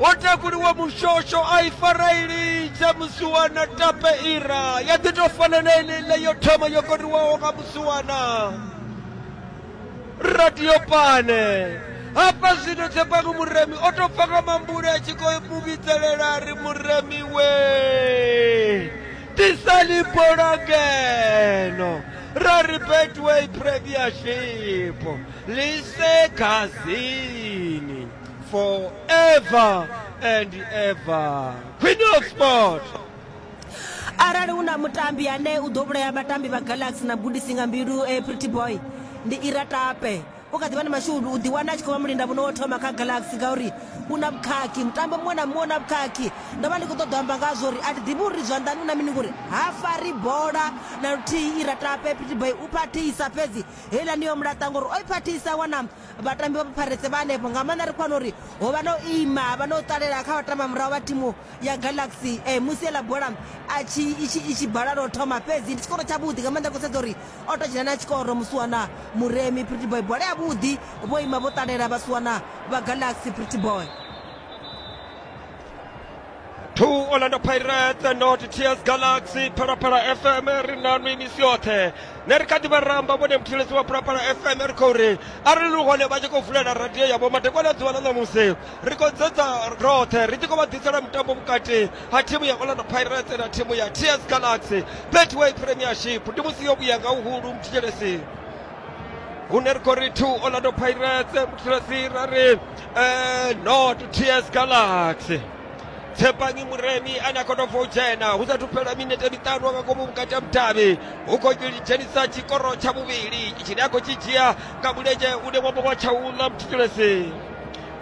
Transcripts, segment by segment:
ho takuliwa mushosho a i fara i lidza musuwana tape ira ya ḓi tou fana na eneiḽa yo thoma yo koriwaho nga musuwana radio pane hafha zwino tshepangu muremi o tou pfa nga mambule a tshi khou mu vhidzelela a ri muremi we tisani bola ngeno ra ri betway premier ship lise khazini forever and ever queen of sport arali hu na mutambi ane u ḓo vhulaya vhatambi vha galaxy na gudisi nga mbilu eh, pretty boy ndi ira tape u kha ḓivha na mashudu u ḓiwana a tshi khou vha mulinda muno wo thoma kha galaxy ngauri u na vhukhakhi mutambo muṅwe na muṅwe u na vhukhakhi ndo vha ndi khou ṱoḓa amba ngazwo uri a thi ḓivhi uri zwanḓani u na mini ngori ha fari bola na luthihi ira tape pretty boy u phathisa fhedzi heiḽani yo mulaṱa ngori o i phathisa wana vhatambi vha pharetse vha hanefho nga maanḓa ri khou wana uri ho vha no ima ha vha no ṱalela kha vhatamba murahu vha thimu ya galaxy um musi eḽa bola atshi i tshi bala lwo thoma fhedzi ndi tshikoro tshavhuḓi nga maanḓa khou sedza uri o to dzhena na tshikoro musiwana muremi pretty boy bola yavhuḓi vho ima vho ṱalela vhasiwana vha galaxy pretty boy to orlando pirates and not tears galaxy phalaphala fm ri na nwi misi yoṱhe ne ri kha ḓi vha ramba vhone muthetshelesi wa phalaphala fm ri khou ri arali lu hone vha tshi khou vulela radio yavho madekwana ḓuvha ḽa ṋamusi ri khou dzedza roṱhe ri tshi khou vha ḓisela mutambo vhukati ha thimu ya orlando pirates na thimu ya tears galaxy betway premiership ndi musi yo vhuya nga uhulu muthetshelesi hune ri khou ri two orlando pirates muthetshelesi ra ri Eh, no to ts galaxy tshepangi muremi ane a khou tou bva u dzhena hu sathu fhela minete miṱanu nga ngomu vhukati ha mudavhi hu khou dzhenisa tshikoro tsha vhuvhili tshine a khou tshi dzhia nga mulenzhe une wavha wa tshaula mutshitshilesi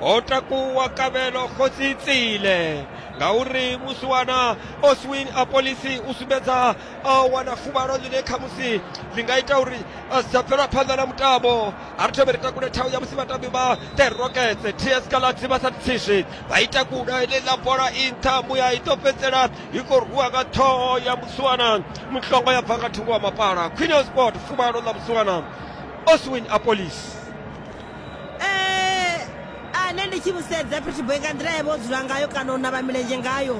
ho takuwa kavhelo khosi tsile ngauri musiwana oswin a polisi u sumbedza a wana fuvhalo ḽine khamusi ḽi nga ita uri a si tsha bvela phanḓa na mutambo a ri thome ri takule thau ya musi vhatambi vha the rockets ts galatsi vha sa tsizwi vha ita kuda heneḽa bola i nṱha muya i ḓo fhedzisela i khou rwiwa nga ṱhoho ya musuwana muhlongo ya bva nga thungo wa mapala queen sport fuvhalo ḽa musuwana oswin apolis nṋe ndi tshi musedza fhethiboy nga nḓila yavha o dzula ngayo kana u navha milenzhe ngayo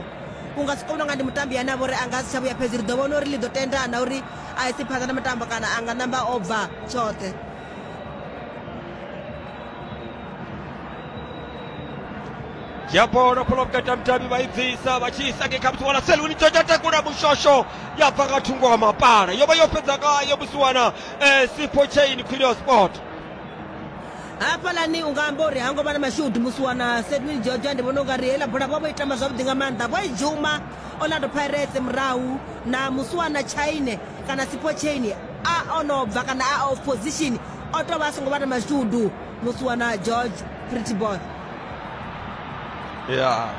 u nga si kone u nga ndi mutambi ane a vha uri a nga si tsha vhuya fhedzi ri ḓo vhona uri ḽi ḓo tenda na uri a isi phanḓa na mutambo kana a nga namba o bva tshoṱhe ya bola bola vhukati ha mutambi vha i bvisa vha tshi isa ngei kha musiwana seluni tsho tsha takula mushosho ya bva nga thungo ha mapala yo vha yo fhedza ngayo musiwana eh, sipho chain quilio sport hafhalani u nga amba uri ha ngo vha na mashudu musi wana sedwin georgia ndi vhona u nga ri heiḽa bola vha vho itama zwavhuḓi nga maanḓa vho i dzhuma orlando pirates murahu na musi wana chaine kana sipo chaine a o no bva kana a off position o tou vha a songo vha na mashudu musi wana george pretty boy ya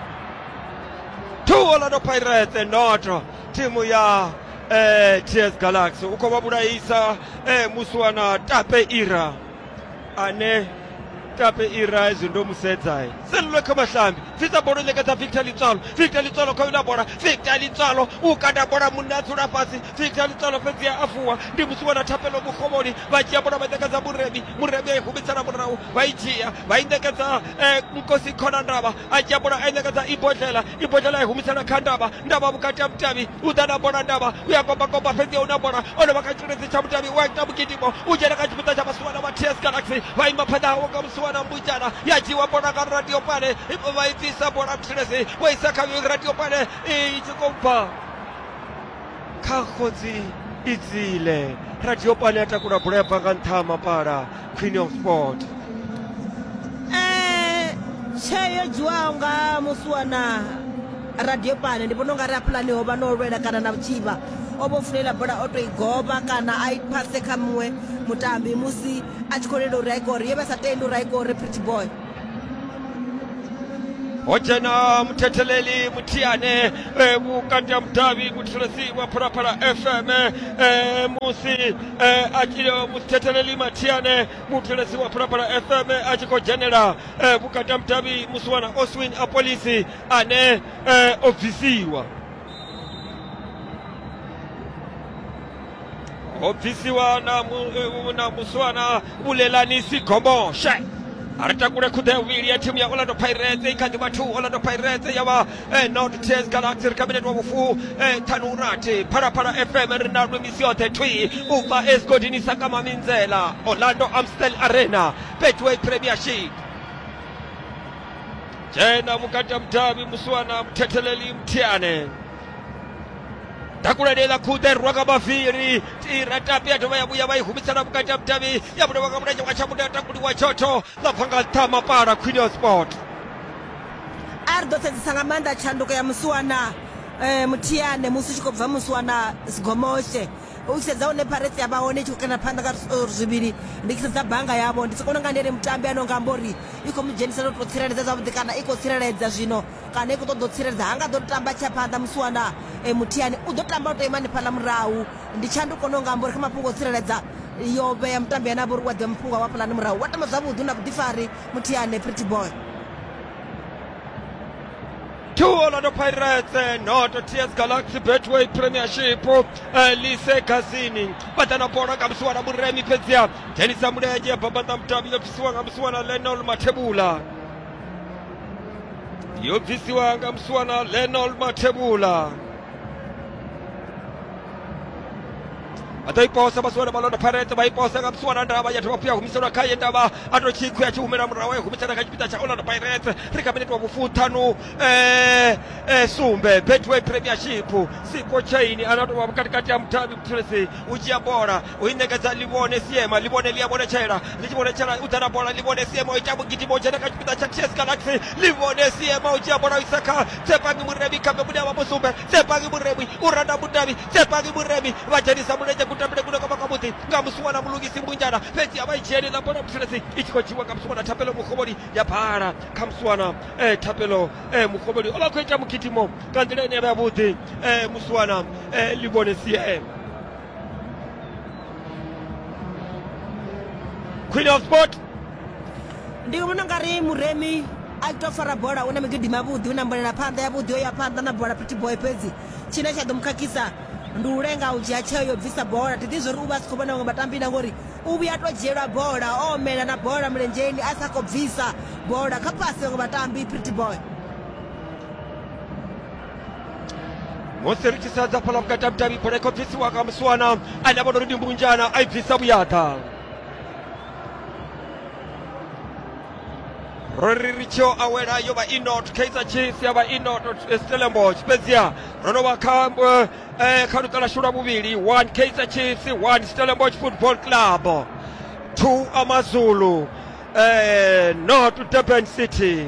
two orlando pirates not timu ya eh, ts galaxy u khou vha vhulaisa eh, musi wana tape ira ane tape ira hezwi ndo mu sedza selulwe kha mahlambi bvisa bola ṋekedza victor litswalo victor litswalo kha wina bola victor litswalo u kanda bola munna a dzula fhasi victor litswalo fhedzi a afuwa ndi musi wana thapelo mukhovhoni vha dzhia bola vha ṋekedza muremi muremi a i humitsela murahu vha i dzhia vha i ṋekedza eh, nkosi khona ndavha a dzhia bola a i ṋekedza ibodlela ibodlela i humisela kha ndavha ndavha vhukati ha mutavhi u ḓa na bola ndavha u ya kombakomba fhedzi u na bola o no vha kha tshiledzi tsha mutavhi u a ita mugidimo u dzhena kha tshipiḓa tsha vhasiwana vha ts galaxy vha ima phanḓa hawo nga musiwana mbujana ya dzhiwa bola nga radio pale vha i bvisa bola tshiledzi vho isa kha radio pale i tshi khou bva kha khotsi idzile radio pale ya takula bola ya bva nga nṱha ha mapala Queen of Sport. Eh, tsheo yo dzhiwaho nga musuwa na radio pane ndi vhona unga ri a pulani ho vha no lwela kana na vhutshivha o vho fulela bola o to i goba kana a i phase kha muṅwe mutambi musi a tshi khou lela uri a i kore ye vha sa tendi uri a i kore pretty boy o dzhena muthetheleli muthihi ane eh, vhukati ha mudavhi muthetshelesi wa phalaphala fm eh, musi eh, a tshi- eh, muthetheleli mathihi ane muthetshelesi wa phalaphala fm a tshi khou dzhenela eh, vhukati ha mudavhi musi wana oswin a polisi ane eh, o bvisiwa ho bvisiwa na, mu, eh, na muswana vhulelanisi gomboshe a ri takule khuḓe ya vhuvhili ya thimu ya orlando pirates i kha ḓi vha two orlando pirates ya vha eh, not tears galaxy ri kabinete wa vhufu eh, ṱhanu rathi phalaphala fm ri na lwemisi yoṱhe thwi u bva esgodini sakama minzela orlando amstel arena betway premiership dzhena mukati ya mudavhi muswana muthetheleli mthiane dakuladela khute rwaka maviri tira tapi yadova yavuya va yi humisela vukati ya mutavi ya vule vaka mulenya wa xamuta ya takuli wa chocho la phanga tama para quinio sport a ri ḓo sedzisa nga maanḓa tshanduko ya musiwana eh, muthiane musi u tshi khou bva musiwana sigomoshe u tshi sedza hune paretse ya vha hone i tshi khou kana phanḓa nga zwi- zwivhili ndi tshi sedza banga yavho ndi sokona nga ndi ene mutambi ano nga amba uri i khou mu dzhenisa no tou tsireledza zwavhuḓi kana i khou tsireledza zwino kana i khou ṱoḓa u tsireledza ha nga ḓo tamba tsha phanḓa musi wana e, muthiani u ḓo tamba u tou ima hanefhaḽa murahu ndi tshanduko no nga amba uri kha mafhungo o tsireledza yo vhea mutambi ane a vha uri wa ḓivha mafhungo a wafhalani murahu wa tamba zwavhuḓi na vhuḓifari muthiani pretty boy two Orlando Pirates eh, not TS Galaxy Betway Premiership eh, Lise Gazini badana bola nga musi wana muremi fhedziha dzhenisa mulenzhe ya bambanda mutabi yo bvisiwa nga musi wana Lenol Mathebula yo bvisiwa nga musiwana lenol mathebula vha ḓo i posa vhasiwana vha londa pharete vha i posa nga musiwana ndavha ya dovha fuya humiselwa khaye ndavha a to tshikhu ya tshi humela murahu ya humisela kha tshipiḓa tsha orlando pirates ri kha miniti wa vhufuṱhanu eh, eh, sumbe betway premiership siko chain ana tovha vhukatikati ha muthavhi muthulesi u dzhia bola u i ṋekedza livhone siema livhone ḽi a vhonetshela ḽi tshi vhonetshela u dzhena bola livhone siema u ita vhugidimo dzhena kha tshipiḓa tsha ts galaxy livhone siema u dzhia bola u isa kha tsepangi muremi khabe mune wa musumbe tsepangi muremi u randa mudavhi tsepangi muremi vha dzhenisa mulenzhe kutambile kune kwavha kwavhuḓi nga musuwana mulungisi mbunjana fhedzi a vha i dzhieli ḽa bola muthelesi i tshi khou dzhiwa nga musuwana thapelo mugovholi ya bhala kha musuwana eh, thapelo eh, mugovholi o vha khou ita mugidimo nga nḓila ine ya vha yavhuḓi eh, musuwana eh, livhone siema Queen of Sport ndi vhona nga ri muremi a tou fara bola hu na migidi mavhuḓi hu na mbolela phanḓa ya vhuḓi yo ya phanḓa na bola pretty boy fhedzi tshine tsha ḓo mu khakhisa ndi u lenga u dzhia tsheo yo bvisa bola thi ḓi zwori u vha a si khou vhona vhaṅwe vhatambi na ngori u vhuya to dzhielwa bola o omela na bola mulenzheni a sa khou bvisa bola kha pasi vhaṅwe vhatambi pretty boy moserikisa dza phala vhukatavhutavhi bola ikho bvisiwa nga muswana ane avha nori ndi mbunjana a i bvisa vhuyaḓa ro ri ri tshio awela yo vha i not kaizer chiefs ya vha i not stellenbosch fhedziha ro no vha kha eh, kha luṱa lashu lwa vhuvhili one kaizer chiefs one stellenbosch football club two amazulu eh, not durban city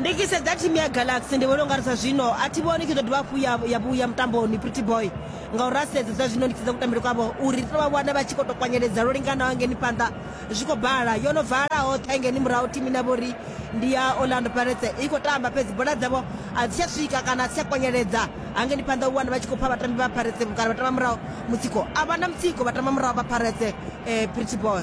ndi tshi sedza thimu ya galaxy ndi vhona u nga ri sa zwino a thi vhoni tshi ḓo dovha hafhu ya- ya vhuya mutamboni pretty boy ngauri a sedza zwa zwino ndi tshi sedza kutambele kwavho uri ri tou vha vhona vha tshi khou tou kwanyeledza lwo linganaho hangeni phanḓa zwi khou bala yo no vala hoṱhe hangeni murahu thimu ine ya vha uri ndi ya orlando pirates i khou tamba fhedzi bola dzavho a dzi tsha swika kana a dzi tsha kwanyeledza hangeni phanḓa u wana vha tshi khou pfha vhatambi vha pirates kana vha tamba murahu mutsiko a vha na mutsiko vha tamba murahu vha pirates eh, pretty boy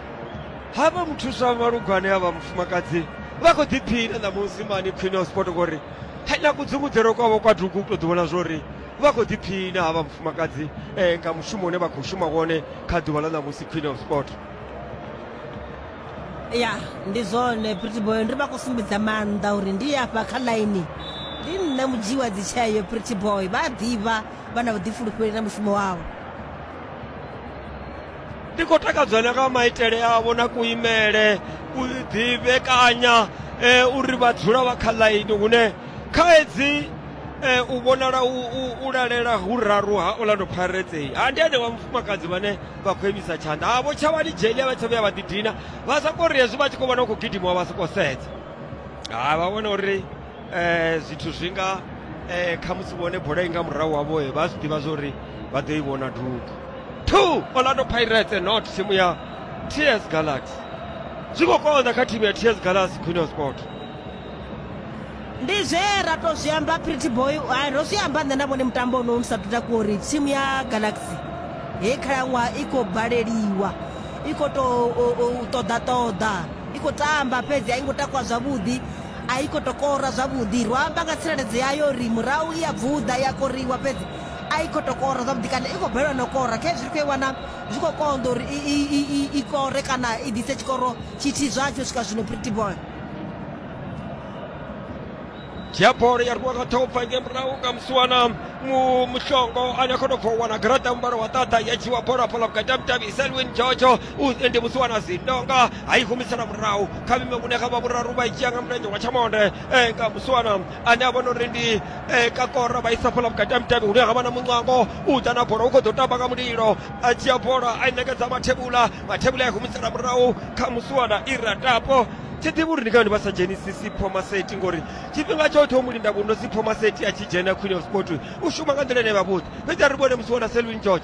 hafha muthusa wa malugwane a vha mufumakadzi vha khou ḓiphina ṋamusi mani khwine wa sport ngori na kudzungudzelo kwavho kwa dugu u tou ḓi vhona zwori vha khou ḓiphina havha mufumakadzi um nga mushumo une vha khou shuma wone kha ḓuvha ḽa ṋamusi queen of sport ya ndi zwone prettyboy ndi vha khou sumbedza maanḓa uri ndi afha kha ḽaini ndi nṋe mudzhii wa dzitsheo prettyboy vha a ḓivha vha na vhuḓifulufheli na mushumo wavho ndi khou takadzwa na nga maitele avho na kuimele u ḓivhekanya e, uri vha dzula vha kha ḽaini hune khaedzi e, u vhonala u, u, u lalela hu raru ha orlando pirates ha ndi ane wa mufumakadzi vhane vha khou imisa tshanḓa havho tshavhani jeli a vha tsha vhuya vha ḓidina vha soko ri hezwi vha tshi khou vhona u khou gidimawa vha soko sedza ha vha vhona uri zwithu zwi nga khamusi vhone bola i nga murahu wavho vha zwi ḓivha zwa uri vha ḓo i vhona dugu two orlando pirates not thimu ya ts galaxy zwi khou konḓa kha thimu ya ts galaxy queen of sport ndi zwe ra to zwi amba pretty boy hai ro zwi amba nṋe na vhone mutambo ono u sathu takuwa uri thimu ya galaxy he khalaṅwaha i khou baleliwa i khou to ṱoḓa ṱoḓa i khou tamba fhedzi a i ngo takuwa zwavhuḓi A i khou tou kora zwavhuḓi. Ro amba nga tsireledzo yayo uri murahu i a bvuḓa, i a koriwa, fhedzi a i khou tou kora zwavhuḓi kana i khou balelwa na u kora. Khezwi ri khou i wana zwi khou konḓa uri i, i, i, i, i kore kana i ḓise tshikoro tshithihi zwatsho u swika zwino, Pretty Boy. dzhia bola ya rwiwa nga ṱhopfa nge murahu nga musiwana mu- muhlongo ane a khou tou bva u wana garaṱa mubalo wa ṱaṱa ya dzhiwa bola hafhaḽa vhukati ha mudavhi selwin jojo u ndi musiwana zindonga a i humisela murahu kha vhime vhune kha vha vhuraru vha i dzhia nga mulenzhe wa tshamonde eh, nga muswana ane a vhona uri ndi eh, kakora vha isa fhala vhukati ha mutevhe hune ha vha na muncango u ḓa na bola u khou ḓo tamba nga mulilo a dzhia bola a i nekedza mathebula mathebula a i humisela murahu kha muswana i ratapo thi ḓivhi uri ndi kani vha sa dzhenisi sipho maseti ngori tshifhinga tshoṱhe o mu linda vhuno sipho maseti a tshi dzhena queen of sport u shuma nga nḓila ine vha vhuḓi fhedzi a ri vhone musi wana selvin george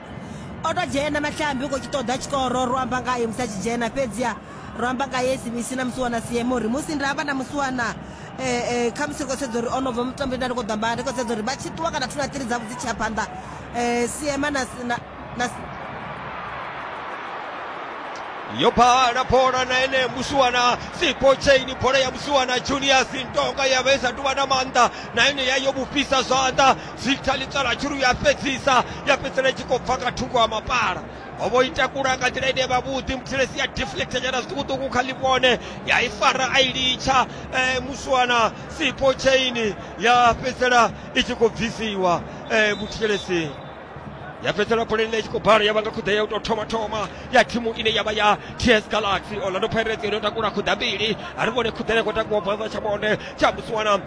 o to dzhena mahlambi u khou tshi ṱoḓa tshikoro ro amba ngayo musi a tshi dzhena fhedziha ro amba nga ye sibisi na musiwana siemo uri musi nda amba na musiwana um eh, um eh, khamusi ri khou sedza uri o no bva mutambo nda ri khou ḓamba ri khou sedza uri vha tshi ṱuwa kana thuna tiri dzavho dzi tshia phanḓa um siema na yo phala bola na ene musiwana sipo chaini bola ya musiwana junior sintonga ya vha i sa tuvha na maanḓa na ene ya yo vhufhisa zwanḓa Victor Litsala Churu ya fhedzisa ya fhedzisela i tshi khou bva nga thungo ha mapala ho vho i takula nga nḓila ine vha vhuḓi muthelesi ya deflecta nyana zwiṱukuṱuku kha ḽivhone ya i fara a i litsha eh, muswana sipo chain ya fhedzisela i tshi khou bvisiwa eh, muthelesi ya fhedzisela bola ine i tshi khou bala ya vha nga khuḓa ya u tou thoma thoma ya thimu ine ya vha ya ts galaxy orlando pirates yo no takula khuḓa mbili a ri vhone khuḓa ine khou takuwa bvaza tsha vhone tsha musiwana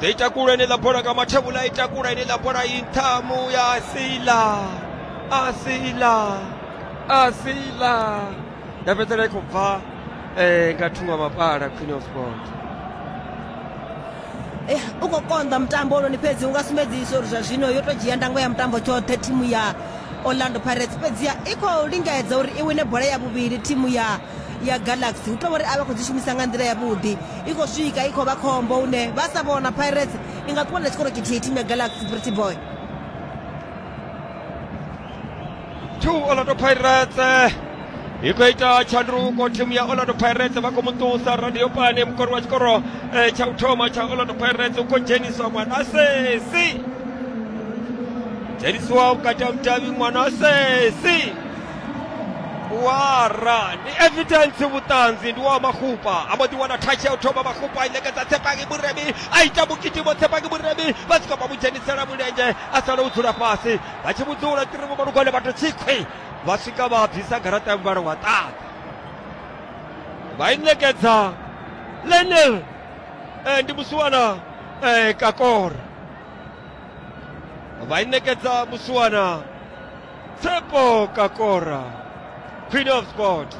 ḓo i takula ine ḽa bola nga mathevhula i takula ine ḽa bola i nthamu ya sila a sila a sila ya fhedzela i khou bva eh, nga thungo mapala queen of sport Eh, u khou konḓa mutambo ononi fhedzi u nga sumbedzisa uri zwa zwino yo tou dzhia ndango ya mutambo tshoṱhe thimu ya orlando pirates fhedziha i khou lingedza uri i wine bola ya vhuvhili thimu ya ya galaxy hu tovha uri a vha khou dzi shumisa nga nḓila yavhuḓi i khou swika i khou vha khombo hune vha sa vhona pirates i nga ṱuwa na tshikoro tshithihi thimu ya galaxy pretty boy two orlando pirates i khou ita tshanduko thimu ya orlando pirates vha khou mu ṱusa radio pane mukori wa tshikoro eh, tsha u thoma tsha orlando pirates u khou dzheniswa mwanasesi dzhenisiwa vhukati ha mudavhi mwanasesi wara ndi evidence vhuṱanzi ndi wa mahupa a mbo ḓi wana thatshi ya u thoma mahupa a i ṋekedza tshepangi muremi a ita mukitimo tshepangi muremi vha swika vha mu dzhenisela mulenzhe a sala u dzula fhasi vha tshi vhudzula tirimu malugwane vha to tsikhwi vha swika vha bvisa garaṱa ya muvhala wa ṱaḓa vha i ṋekedza lenel eh, ndi musiwana eh, kakora vha i ṋekedza musiwana Tsepo Kakora, Queen of Sport.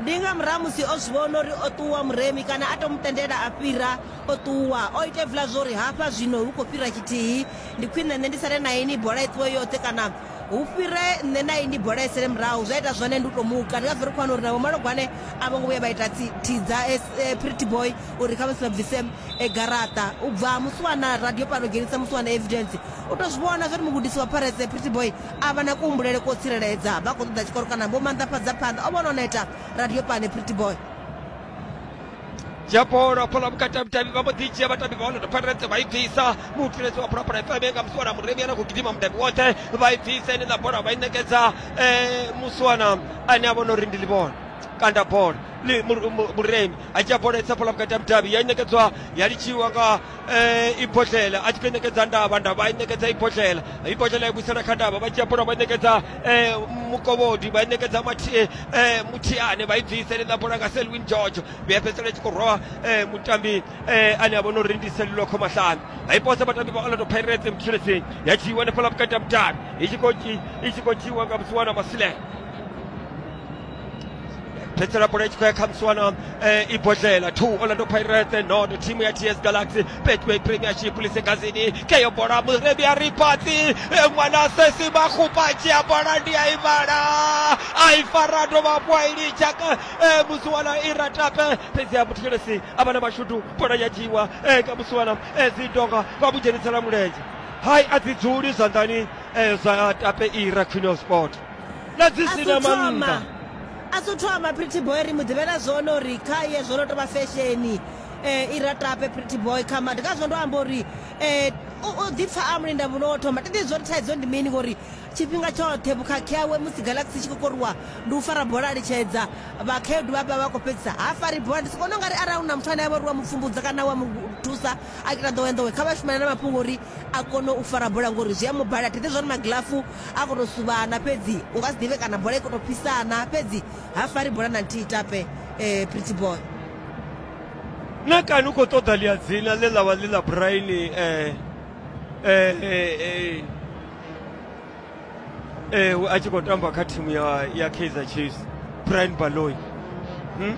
ndi nga murahu musi o zwi vhona uri o ṱuwa muremi kana a to mu tendela a fhira o ṱuwa o ita hevula zwo uri hafha zwino hu khou fhira tshithihi ndi khwine nṋe ndi sale na ini bola i ṱuwe yoṱhe kana hu fhire nṋe na ini bola i sele murahu zwa ita zwone ndi u to muka ndi ngazwo ri khou wana uri na vhomalogwane a vho ngo vhuya vha ita tsi- thidza eh, pretty boy uri kha vha si vha bvise e garaṱa u bva musi wana radio pano dzhenisa musi wana evidence u to zwi vhona zwori mugudisi wa pirates pretty boy a vha na kuhumbulele ko tsireledza vha khou ṱoḓa tshikoro kana vho manḓafhadza phanḓa o vhona o neta radio pane pretty boy dzhia bola hafhaḽa vhukati ha vhudavhi vha mbo ḓi dzhia vhatambi vha orlando pirates vha i bvisa mutsireledzi wa phalaphala fm nga musi wana muremi ana khou gidima mudavhi woṱhe vha i bvisa ine ḽa bola vha i ṋekedza eh, musi wana ane a vhona uri ndi ḽivhona kanda bola Li- Mur- Mur- muremi a dzhia bola i tsapola vhukati ha mudavhi ya i ṋekedzwa ya litshiwa nga eh, ibodlela a tshi khou i ṋekedza ndavha ndavha a i ṋekedza ibodlela ibodlela i vhuisela kha ndavha vha dzhia bola vha i ṋekedza eh, mukovhodi vha i ṋekedza Mathi- eh, muthiane vha i bvisa ḽi ṋa bola nga selwin george vhuya fhedzisela i tshi khou rwa eh, mutambi eh, ane a vha no uri ndi selulokho mahlanu a i pose vhatambi vha orlando pirates mutshileseni ya dzhiiwa hanefhala vhukati ha mudavhi i tshi khou dzhi- i tshi khou dzhiiwa nga musiwana masilela phedzisela bola i tshi khou ya kha muswana eh, i bodlela two orlando pirate nono thimu ya ts galaxy betway premiership lisegazini keyo bola murebi ya ripatsi eh, ṅwana sesi makgupatši ya bola ndi ya ivhala a i fara dovha kwa i litsha ka eh, muswana i ratape fhedzi ya muthelesi a vha na mashudu bola ya dzhiiwa ka muswana zidonga vha mudzhenisela mulenzhe hai a dzi dzuli zwanḓani zwa tape ira queen of sport na dzi si na mannḓa a thu thoma pretty boy ri mu ḓivhela zwone uri khaye zwo no tou vha fesheni um eh, i ratape pretty boy kha madi kha zwino ndo amba uri um u ḓipfa a mulinda vhuno wo thoma tete zwo ri thaidzo ndi mini ngori tshifhinga tshoṱhe vhukhakhi awe musi galaxy tshi khou koriwa ndi u fara bola a litshedza vhakhaedu vha vha vha khou fhedzisa ha fari bola ndi si kone u nga ri arali u na muthu ane a vha uri wa mu pfumbudza kana wa mu thusa a kita nḓowenḓowe kha vha shumana na mafhungo uri a kone u fara bola ngori zwi a mu balela thi ḓivhi zwori magilafu a khou tou suvhana fhedzi u nga si ḓivhe kana bola i khou tou fhisana fhedzi ha fari bola na nthihi tape um pretty boy na kani u khou ṱoḓa ḽia dzina ḽe ḽa vha ḽi ḽa braini um um a tshi khou tamba kha thimu ya kaizer chiefs brian baloi hmm?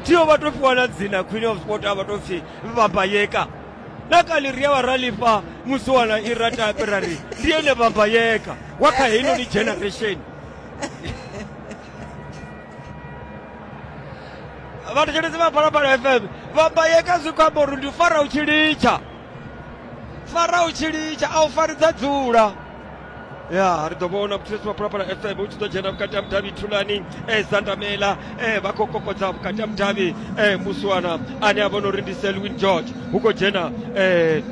thiyo vha tou fhiwa na dzina queen of sport a vha tou pfhi vhambayeka na kali ri a vha ra lifha musi wana i ra tapi ra ri ndi ene vambayeka wa kha heinoni generation vhathetshelezi vha phalaphala fm vambayeka zwi khou amba uri ndi fara u tshi litsha fara u tshi litsha a u faridza dzula ya ri ḓo vhona muthulesi maphalaphala fm u tshi ḓo dzhena vhukati ha mudavhi thulani e zandamela e vha khou kokodza vhukati ha mudavhi e muswana ane a vhona uri ndi selwin george hu khou dzhena e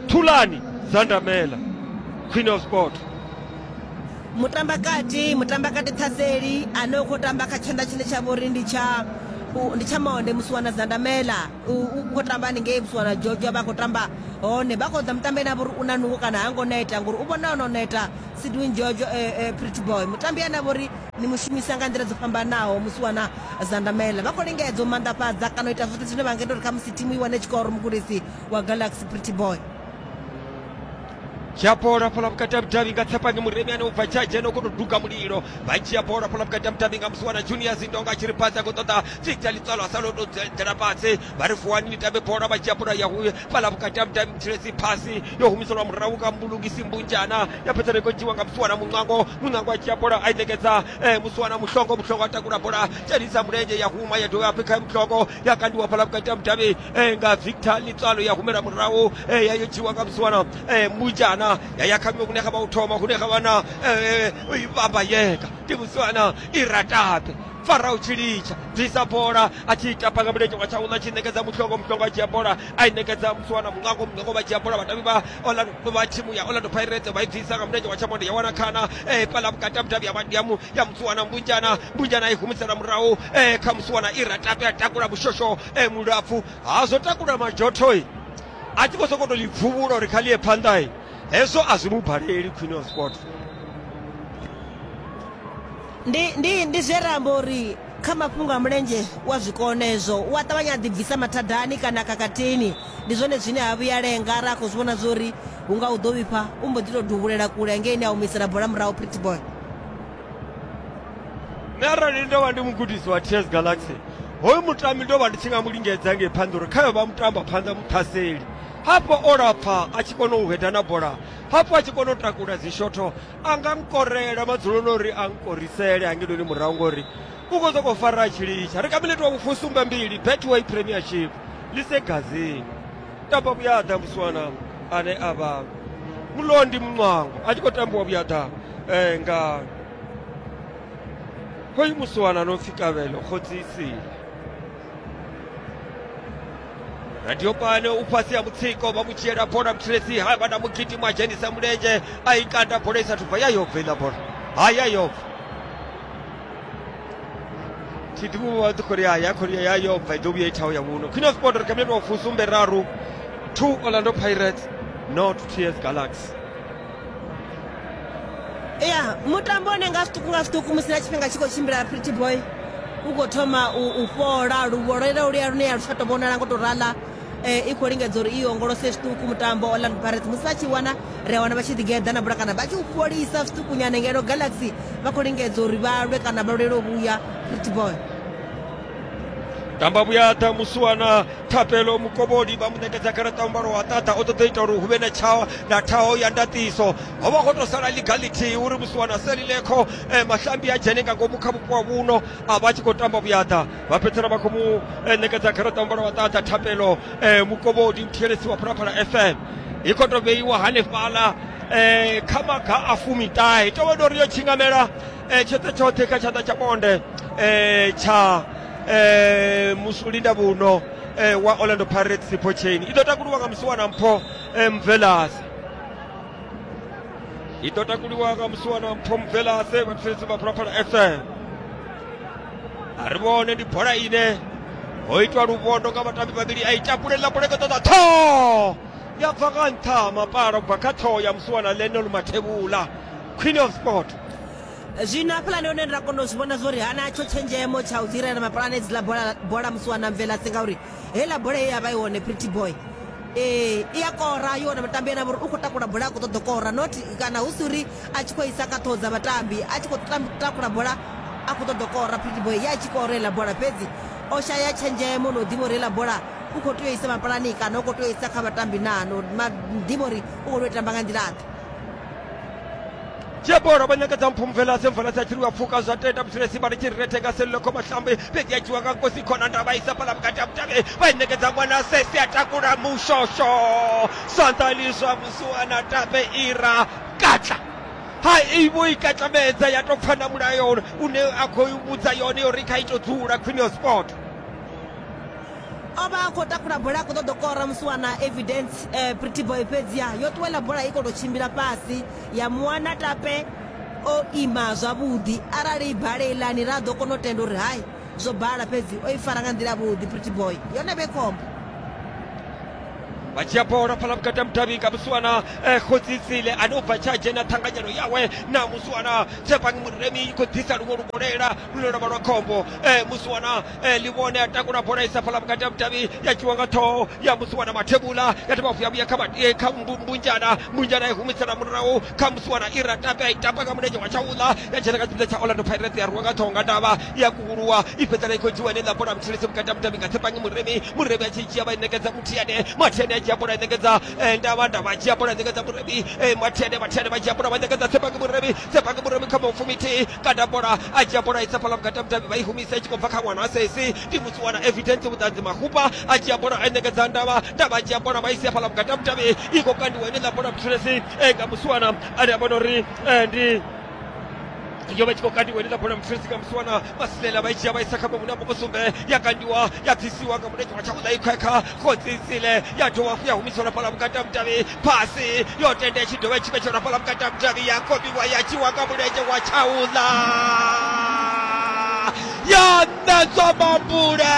thulani zandamela queen of sport mutambakati mutambakati ṱhaseli ane u khou tamba kha tshanḓa tshine tsha vha uri ndi tsha u- ndi tsha monde musiwana zandamela U khou tamba haningei Botswana Georgia vha khou tamba hone vha khou ḓa mutambi ane a vha uri u na nungo kana ha ngo neta ngori u vhona ono neta Sidwin George eh, eh, Pretty Boy mutambi ane a vha uri ni mu shumisa nga nḓila dzo fhambanaho musi wana Zandamela vha khou lingedza u manḓafhadza kana u ita zwoṱhe zwine vha nga ita uri khamusi thimu i wane tshikoro mugudisi wa Galaxy Pretty Boy dzhia bola fhala vhukati ha vhudavhi nga tsepani muremi ane u bva tshadzhe no kono duga mulilo vha dzhia bola fhala vhukati ha mutambi nga musi wana junior zindonga a tshi ri pasi a khou ṱoḓa tsitsa litswalo a sa loto dzela fhasi vha ri fuwani ni tambe bola vha dzhia bola ya huye fhala vhukati ha mutambi mutshilesi phasi yo humiselwa murahu nga mbulungisi mbunjana ya fhedza ni khou dzhiwa nga musi wana muṋwango muṋwango a dzhia bola a i ṋekedza eh, musi wana muhlongo muhlongo a takula bola dzhenisa mulenzhe ya huma ya dovha ya pfekha muhlongo ya kandiwa fhala vhukati ha mudavhi eh, nga victor litswalo ya humela murahu eh, ya yo dzhiwa nga vhusiwana eh, mujana ya ya kha miṅwe hune kha vha u thoma hune kha vha na eh, eh, vhamba yeka ndi vhusiwana i ratape farao tshi litsha bvisa bola a tshi ita panga mulenzhe wa tshaula tshi ṋekedza muhlongo muhlongo a dzhia bola i ṋekedza musiwa na muṋango muṋango vha dzhia bola vhatavi vha orlando vha thimu ya orlando pirates vha i bvisa nga mulenzhe wa tshamonde ya wana khana um fhaḽa vhukati ha vhudavhi ya musiwana mbunjana mbunjana i humisela murahu um kha musiwana i ratape a takula mushosho um mulapfu ha zwo takula majothoi a tshi khou sokou to ḽi pfuvhula uri kha ḽi ye phanḓai hezwo a zwi mu baleli queen of sport ndi ndi ndi zwe ra amba uri Kha mafhungo a mulenzhe u a zwi kona ezwo, u a ṱavhanya a ḓibvisa mathadani kana khakhathini. Ndi zwone zwine ha vhuyi a lenga arali a khou zwi vhona zwa uri hu nga hu ḓo vhifha, u mbo ḓi tou duvhulela kule hangeini a humisela bola murahu Pretty Boy. Nṋe arali ndo vha ndi mugudisi wa TS Galaxy, hoyu mutambi ndo vha ndi tshi nga mu lingedza ngei phanḓa uri khayo vha mutamba phanḓa muṱhaseli. Hafho o lapfa a tshi kona u hweda na bola, hafhu a tshi kona u takula dzishotho, a nga nkorela madzuloni uri a nkorisele hangenoni murahu ngori u khou sokou fara a tshi litsha ri kha minete wa vhufusumbe mbili betway premiership lisegazini tamba vhuyaḓa musiwana ane a vha mulondi muṅwango a tshi khou tambiwa vhuyaḓa um eh, nga hoyu musiwana no pfi kavhelo khodzisile radio pano u fhasi ha mutsiko vha mu dzhiela bola muthilesi ha vha na mugidi mwa dzhenisa mulenzhe a i kanda bola i sa thubva ya yobva iḽa bola ha ya yobva thidimu vha ḓi khori ya ya khori ya yobva i ḓo vhuya i thaho ya vhuno queen of sport ri kha minete wa fusumbe raru two orlando pirates not ts galaxy ya mutambo une nga zwiṱuku nga zwiṱuku musi na tshifhinga tshi khou tshimbila pretty boy u khou thoma u fhola luvho lwela lu ya lune ya lu tsha to vhonala ngo to rala i khou lingedza uri i ongolose zwiṱuku mutambo orlando pirates musi vha tshi wana ri a wana vha tshi ḓigeḓa na bula kana vha tshi u fholisa zwiṱukunyana ngeno galaxy vha khou lingedza uri vha lwe kana vha lwele u vhuya pretty boy tamba vhuyaḓa musi wana thapelo mukovholi vha mu ṋekedza garaṱa u mbalo wa ṱaṱa o ṱoḓa ita uri hu vhe na tshawa na thaho ya ndaṱiso ho vha ho tou sala liga ḽithihi uri musi wana selilekho eh, mahlambi a dzhene nga ngomu kha vhupo wa vhuno a vha tshi khou tamba vhuyaḓa vha fhedzisela vha khou mu eh, ṋekedza garaṱa u mbalo wa ṱaṱa thapelo eh, mukovholi muthielesi wa phalaphala fm i khou tou vheiwa hanefhaḽa eh, kha maga a fumiṱahe tovha ndo ri yo tshingamela e, tshoṱhe tshoṱhe kha tshanḓa tsha bonde e, tsha e, musulinda vhuno e, wa orlando pirates sipho chain i ḓo takuluwa nga musiwana mpho e, mvelase i ḓo takuliwa nga musiwana mpho mvelase vhathetshelesi vha phalaphala fm a ri vhone ndi bola ine ho itwa luvhondo nga vhatambi vhavhili a i takulela bola i khou ṱoḓa ṱhoho ya bva nga nṱha mapala u bva kha ṱhoho ya musiwana lenol mathevhula queen of sport zwino hafhaḽani hone ra kona u zwi vhona zwo ri hana tsho tshenzhemo tsha u dzirela mapulane edzi ḽa bola bola musi wana mvela si ngauri heiḽa bola ye ya vha i hone pretty boy ee i a kora yo wana vhatambi ena vhori u khou takula bola a khou ṱoḓa kora not kana hu si uri a tshi khou isa kha ṱhoho dza vhatambi a tshi khou takula bola a khou ṱoḓa kora pretty boy ya tshi kora heiḽa bola fhedzi o shaya tshenzhemo no ḓivha uri heiḽa bola u khou tea u isa mapulani kana u khou tea u isa kha vhatambi naa no ḓivha uri u khou tea u tamba nga nḓilaḓe dzhia bola vha nyakadza mphumvela semvela sa tshiliwa pfuka zwa tenda muthulesi vha litshi retheka selilokho mahlambi fhedzi a dzhiwa nga nkosi khona ndavha isa fhala vhukati ha mutavhe vha i nekedza ṅwana sesi a takula mushosho sanḓani zwa musuwana tape ira katla ha ivo i katlamedza ya tou pfana mulayo une a khou vhudza yone uri kha ito dzula khwinio sport O vha a khou takula bola a khou ṱoḓa u kora musiwana Evidence eh, Pretty Boy fhedziha yo ṱuwela bola i khou tou tshimbila fhasi ya muwana tape o ima zwavhuḓi arali bale ilani ra ḓo kona u tenda uri hai zwo bala fhedzi o i fara nga nḓila vhuḓi Pretty Boy yone vhe khombo vha dzhia bola phala vhukati ha mudavhi nga musiwana eh, khodzisile ane u bva tsha dzhena ṱhanganyelo yawe na musiwana tshepangi muremi i khou ḓisa luṅwe lugolela lune lwa vha lwa khombo eh, musiwana eh, livhone a takula bola i sa fhala vhukati ha vhudavhi ya dzhiwa nga ṱhoho ya musiwana mathebula ya dovha vuya vhuya kha vha- eh, kha mbu- mbunjana mbunjana i humisela murahu kha musiwana i ratape a i tapa nga mulenzhe wa tshaula ya dzhena kha tshipiḓa tsha orlando pirates ya rwiwa nga ṱhoho nga ndavha ya kuhuluwa i fhedzela i khou dzhiwa heneiḽa bola mutshilisi vhukati ha vhudavhi nga tsepangi muremi muremi a tshi dzhia vha i ṋekedza muthiane mathiane a dzhia bola i ṋekedza eh, ndavha ndavha a dzhia bola i ṋekedza muremi eh, mathiane mathiane vha dzhia bola vha ṋekedza tsepangi muremi tsepangi muremi kha maufumi thihi kanda bola a dzhia bola isa fhala vhukati ha mudavhi vha i humisa i tshi khou bva kha ṅwana a sesi ndi musi wana evidence vhuṱanzi mahupa a dzhia bola a i ṋekedza ndavha ndavha a dzhia bola vha i sia fhala vhukati ha mudavhi i khou kandiwa ine ḽa bola mutshulesi eh, nga musi wana ane a vhona uri eh, ndi yo vha tshi khou kandiwa ine ḽa bola mutshulesi nga musi wana masilela vha i dzhia vha isa kha mavhune a mukusumbe ya kandiwa ya bvisiwa nga mulenzhe wa tshakuḽa i khwekha khotsisile ya dovha hafhu ya humiselwa fhala vhukati ha mudavhi pasi yotenda i tshi dovha i tshi vhetshela fhaḽa vhukati ha mudavhi ya komiwa ya tshiwa nga mulenzhe wa tshaula ya ṋedzwa mambule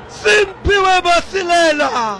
simphiwe masilela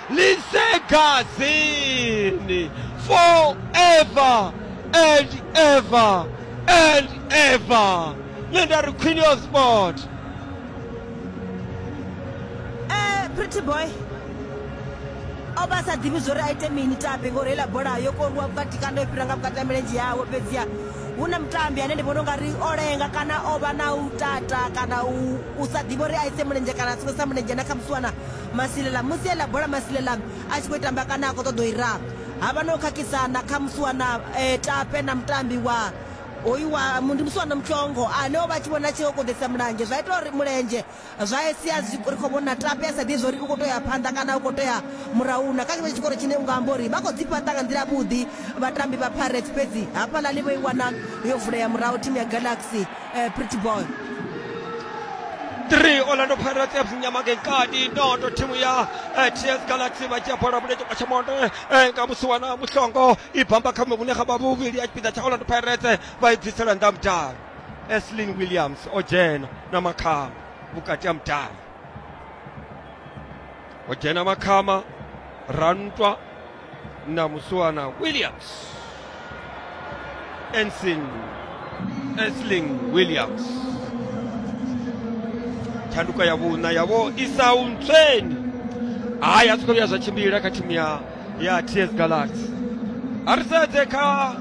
lisegazini forever and ever and ever nṋe nda ri queen of sport eh pretty boy o vha sa ḓivhi zwo ri a ite mini tape ngori heiḽa bola yo koruwa vhukati kana yo fhira nga vhukati ha milenzhe yawe fhedziha hu na mutambi ane ndi vhona u nga ri o lenga kana o vha na u tata kana u sa ḓivha uri a ise mulenzhe kana a songo sa mulenzhe na khamusi wana Masilela, Musi e ḽa bola Masilela a tshi khou i tamba kana a khou ṱoḓa u i raha, ha vha na u khakhisana kha musiwana tape na mutambi wa hoyu wa, ndi musiwana mutswongo ane o vha a tshi vhona a tshi kokoḓelisa mulenzhe zwa ita uri mulenzhe zwa sia zwi ri khou vhona tape a sa ḓivhi zwa uri u khou tea u ya phanḓa kana u khou tea murahu. Na kha tshenetsho tshikoro tshine u nga amba uri vha khou ḓi fhaṱa nga nḓila yavhuḓi vhatambi vha Pirates fhedzi hafhaḽani vho i wana yo vulea murahu thimu ya Galaxy. eh, pretty boy 3 orlando pirates fc nyama ke nkati noto thimu ya eh, ts galaxy vha dzhia bola vhuledzhe kwa tshamonde eh, nga musi wana muhlongo i bamba kha muvhune ga vha vhuvhili ya tshipiḓa tsha orlando pirates vha i bvisela nnḓa mudavhi eslin williams o dzhena na makhama vhukati ha mudavhi o dzhena makhama rantwa na Muswana Williams. Ensign Esling Williams. Tshanduko ya vhuṋa yavho i sa u ntsweni. Hayi a zwi khou vhuya zwa tshimbila kha thimu ya ya TS Galaxy. A ri sedze kha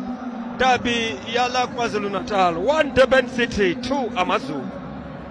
dabi ya ḽa KwaZulu-Natal 1 Durban City 2 Amazulu.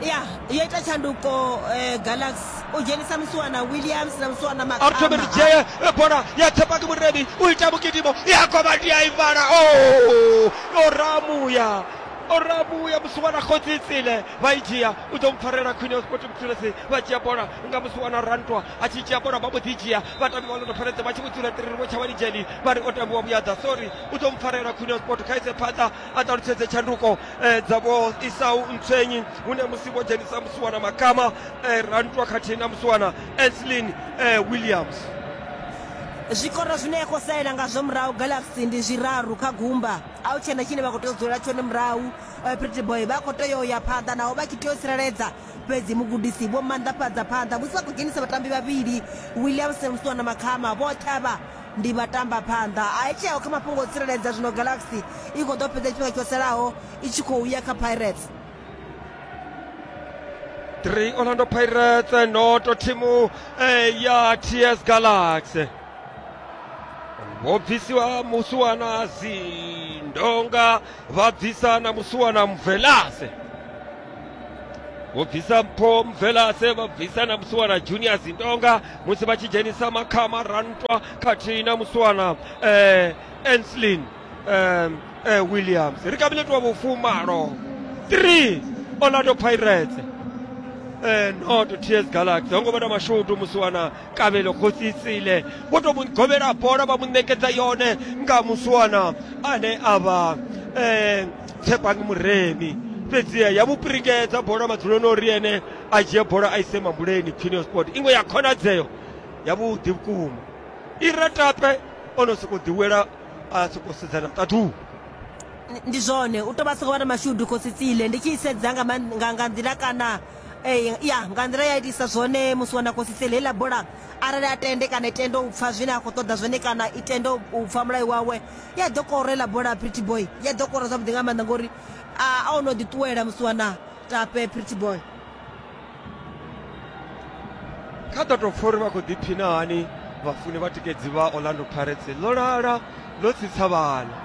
ya yo ita tshanduko eh, galaxy u dzhenisa musiwana williams na musiwana arthur meridzee bola ya tsepaki murebi u ita mugidimo ya komati ya ivala o oh! o ramuya o ramuya musiwana khotsitsile vha i dzhia u ḓo mpfarela khwine ya sport mutulesi vha dzhia bola nga musiwana rantwa a tshi dzhia bola vha mbo ḓi dzhia vhatambi vha londo pfaledza vha tshi vho dzula tiriri vho tsha vha lidzheli vha ri o tambiwa vhuyadza sorry u ḓo mpfarela khwine ya sport khaise phanḓa a ṱalutshedze tshanduko eh, dza vho isau ntswenyi hune musi vho dzhenisa musiwana makama eh, rantwa khathihi na musiwana eslin eh, williams zwikoro zwine ya khou salela ngazwo murahu galaxy ndi zwiraru kha gumba a hu tshena tshine vha khou tea u dzulela tshone murahu eh, pretty boy vha khou tea u ya phanḓa naho vha tshi tea u tsireledza fhedzi mugudisi vho maanḓafhadza phanḓa musi vha khou dzhenisa vhatambi vhavhili williamson musiwana makhama vhoṱhe avha Ndi vhatambaphanḓa a i tsheo kha mafhungo o tsireledza zwino Galaxy i khou ḓo fhedza tshifhinga tsho salaho i tshi khou ya kha Pirates. 3 Orlando Pirates noto thimu eh, ya TS Galaxy vho bvisiwa musuwana zindonga vha bvisa na musuwana mvelase vho bvisa mpho mvelase vha bvisa na musiwana junior zindonga musi vha tshi dzhenisa makhama rantwa khathihi na musiwana eh, enslin eh, eh, williams ri kha minete wa vhufumalo 3 orlando pirates eh, not ts galaxy ho ngo vha na mashudu musiwana kabelo khositsile vho to mu govhela bola vha mu ṋekedza yone nga musiwana ane a vha eh, tshepang muremi fhedziha ya mu pirikedza bola madzuloni ori ene a dzhie bola a ise mambuleni quinio sport iṅwe ya khonadzeo yavhuḓi vhukuma ira tape o no sokou ḓiwela a sokou sedzana ṱaḓuu ndi zwone u tou vha sokou vha na mashudu khositsile ndi tshi sedza nga nga nḓila kana eh, ya nga nḓila ya itisa zwone musi wana khositsile heiḽa bola arali a tende kana i tende u pfha zwine a khou ṱoḓa zwone kana i tende u pfha mulayo wawe i a ḓo kora iḽa bola pretty boy i a ḓo kora zwavhuḓi nga maanḓa ngori a a o no ḓi ṱuwela musiwana tape pretty boy kha ḓo tou pfha uri vha khou ḓiphina hani vhafuni vha tikedzi vha orlando pirates ḽo lala ḽo tsitsa vhala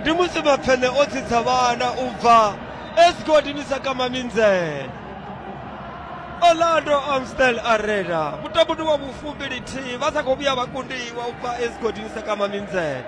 ndi musi mapfene o tsitsa vhala u bva esgodini sa kama minzela orlando amstel arena mutambo ndi wa vhufumbili-thihi vha sa khou vhuya vha kundiwa u bva esgodini sekama minzele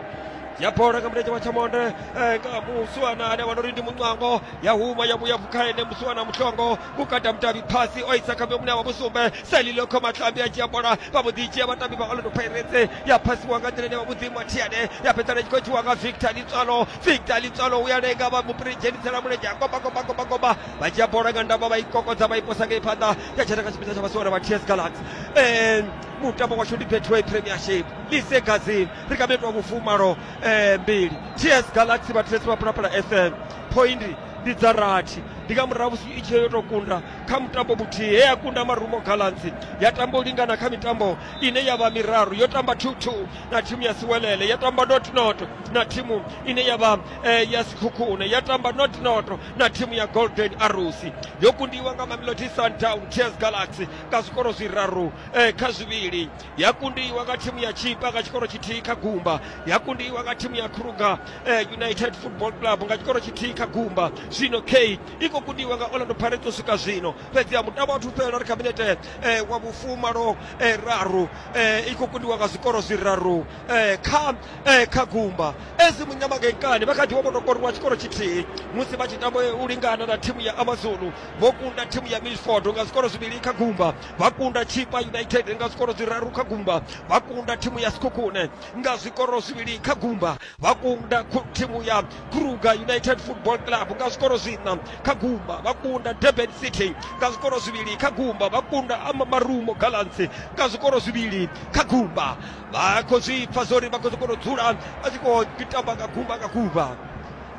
ya bola nga mulenzhe wa tshamonde eh, nga musuwana ane vha no ri ndi muncwango ya huma ya vhuya vhukha ene musuwana muhlongo vhukata mutavhi phasi o isa kha mune wa vhusumbe selilo kho matlambi a dzhia bola vha mbo ḓi dzhia vhatambi vha orlando pirates ya phasiwa nga nḓila ine vha mudzimu a thiane ya fhedzana tshi khou tshiwa nga victor litswalo victor litswalo u ya lenga vha mupiri dzhenisela mulenzhe a komba komba komba komba vha dzhia bola nga ndavha vha i kokodza vha i posa nga i phanḓa ya dzhena kha tshipiḓa tsha vhasiwana vha ts galax um mutambo washu ndi betway premiership lise gazin ri kha metwa vhufumalo um mbili ts galax vha ts vha phalaphala fm point ndi dza rathi ndi nga murahu musi i tshi yo tou kunda kha mutambo muthihi he ya kunda marumo galansi ya tamba u lingana kha mitambo ine ya vha miraru yo tamba 22 na thimu ya siwelele ya tamba notnoto na thimu ine ya vha eh, ya sikhukhune ya tamba notnoto na thimu ya golden arrows yo kundiwa nga mamelodi sundown tears galaxy nga zwikoro zwiraru eh, kha zwivhili ya kundiwa nga thimu ya chipa nga tshikoro tshithihi kha gumba ya kundiwa nga thimu ya kruger eh, united football club nga tshikoro tshithihi kha gumba zwino k i khou kundiwa nga orlando pirates u swika zwino fhedzi ya mutambo wathu fhelela ri khabinete eh, wa vhufumalo eh, raru eh, i khou kundiwa nga zwikoro zwiraru eh, kha, eh, kha gumba ezi munyamakenkani vha kha ḓi vha vho tou koriwa tshikoro tshithihi musi vha tshi tamba u lingana na thimu ya amazulu vho kunda thimu ya milford nga zwikoro zwivhili kha gumba vha kunda chipa united nga zwikoro zwiraru kha gumba vha kunda thimu ya sikhukhune nga zwikoro zwivhili kha gumba vha kunda khu- thimu ya kruger united football club nga zwikoro zwiṋa kha gumba vha kunda durban city nga zwikoro zwivhili kha gumba vha kunda ama marumo gallants nga zwikoro zwivhili kha gumba vha khou zwi pfa zwori vha khou zwi kona u dzula vha tshi khou tamba nga gumba nga gumba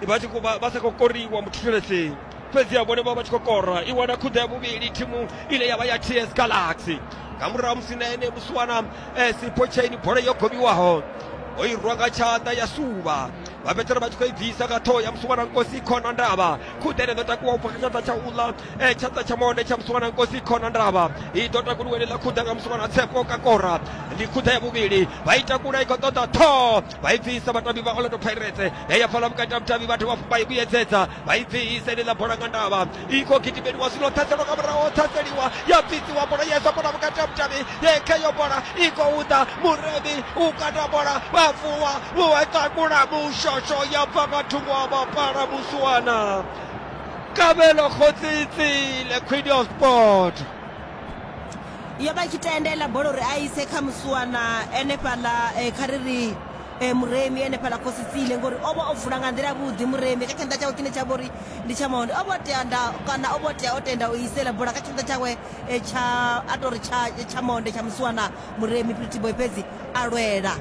vha tshi khou vha vha sa khou koriwa muthetshelesi fhedzi a vhone vha vha tshi khou kora i wana khuḓa ya vhuvhili thimu ine ya vha ya ts galaxy nga murahu musi na ene musi wana eh, sipho chaini bola yo gobiwaho o i rwa nga tshanḓa ya suvha vha fhedzisela vha tshi khou i bvisa nga ṱhoho ya musi wana nkosi khona ndavha khuḓa ine ḓo takuwa u bva kha tshanḓa tsha uḽa e tshanḓa tsha monde tsha musumana nkosi khona ndavha i ḓo takuluwe ḽi ḽa khuḓa nga musumana tsepo kakora ndi khuḓa ya vhuvhili vha i takula i khou ṱoḓa ṱhoho vha i bvisa vhatambi vha orlando pirates he ya pfala vhukati ha vhutambi vhathu vha i vhuyedzedza vha i bvisa ḽi ḽa bola nga ndavha i khou gidimeliwa zwino ṱhaselwa nga muraho ṱhaseliwa ya bvisiwa bola yesa bola vhukati ha vhutambi ye kheyo bola i khou ḓa muremi u kata bola vha vuwa vhuwa takula mushosho ya bva nga thungo ha mapala musuwana kabelo khotsiitsile queen of sport yo vha tshi tendela bola uri a ise kha musuwana enefhaḽa eh, kha ri ri eh, muremi enefhaḽa khositsile ngori o vha o vula nga nḓila vhuḓi muremi kha tshanḓa tshawe tshine tsha vha uri ndi tsha mahondi o vha o tea nda kana o vha o tea o tenda u isela bola kha tshanḓa tshawe eh, tsha a tori tsha tsha maonde tsha musuwana muremi pretty boy fhedzi a lwela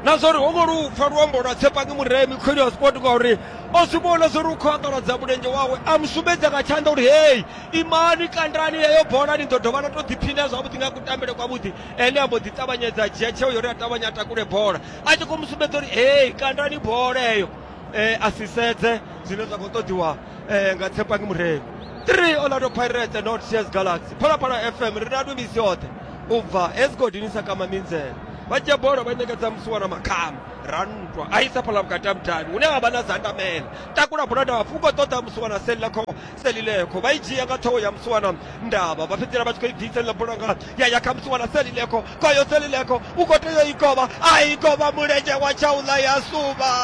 na zwa uri ho ngo lu pfa luambo lwa tshepangi muremi khweli wa sport ngauri o zwi vhona zwa uri u khou angaladza mulenzhe wawe a mu sumbedza nga tshanḓa uri hei imani kandani yeyo bola ni ḓo dovha na to ḓiphina zwavhuḓi nga kutambele kwavhuḓi ene a mbo ḓi ṱavhanyedza a dzhia tsheo yori a ṱavhanya a takule bola a tshi khou mu sumbedza uri hei kandani bola eyo um a si sedze zwine zwa khou ṱoḓiwa eh, nga tshepangi murevhi 3 orlando pirates not cs galaxy phalaphala fm ri na ndumisi yoṱhe u bva hezgodini sa kama minzela vha dzhia bola vha ṋekedza musi wana makhama ra nthwa a isa phala vhukati ha mudavhi hune ha vha na zandamela takula bola ndavha fuko ṱoḓa musi wana selilekho selilekho vha i dzhia nga ṱhoho ya musi wana ndavha vha fhedzisela vha tshi khou i bvisa ḽa bola nga ya ya kha musi wana selilekho kwayo selileko u khou tea i kovha a i kovha mulenzhe wa tshaula ya suvha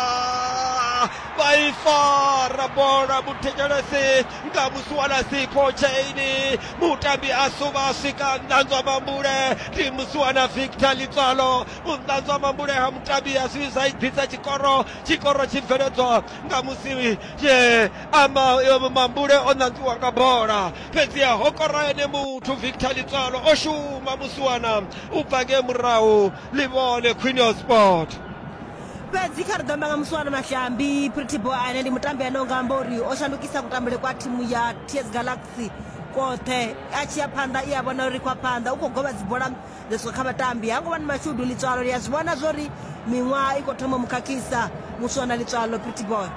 vha i fara bola muthetshelesi nga musuwana sikho tsheini mutambi a suvha a swika nnanzwa mambule ndi musuwana victor litswalo munanzwa mambule ha mutambi a zwi zwa i ḓisa tshikoro tshikoro tshi bveledzwa nga musi ama mambule o nanzwiwa nga bola fhedziha ho kora ene muthu victor litswalo o shuma musiwana u bva nge murahu ḽi vhone queen of sport fhedzi kha ri ḓo amba nga musiwana mashambi pritibo ane ndi mutambi ane unga amba uri o shandukisa kutambule kwa thimu ya ts galaxy kothe a tshi ya phanḓa i a vhona uri kwa phanḓa u khou govha dzibola dzo swika kha vhatambi ha ngo vha ni mashudu litswalo ri a zwi vhona zwo ri miṅwaha i khou thoma mukhakhisa muswana litswalo pritiboy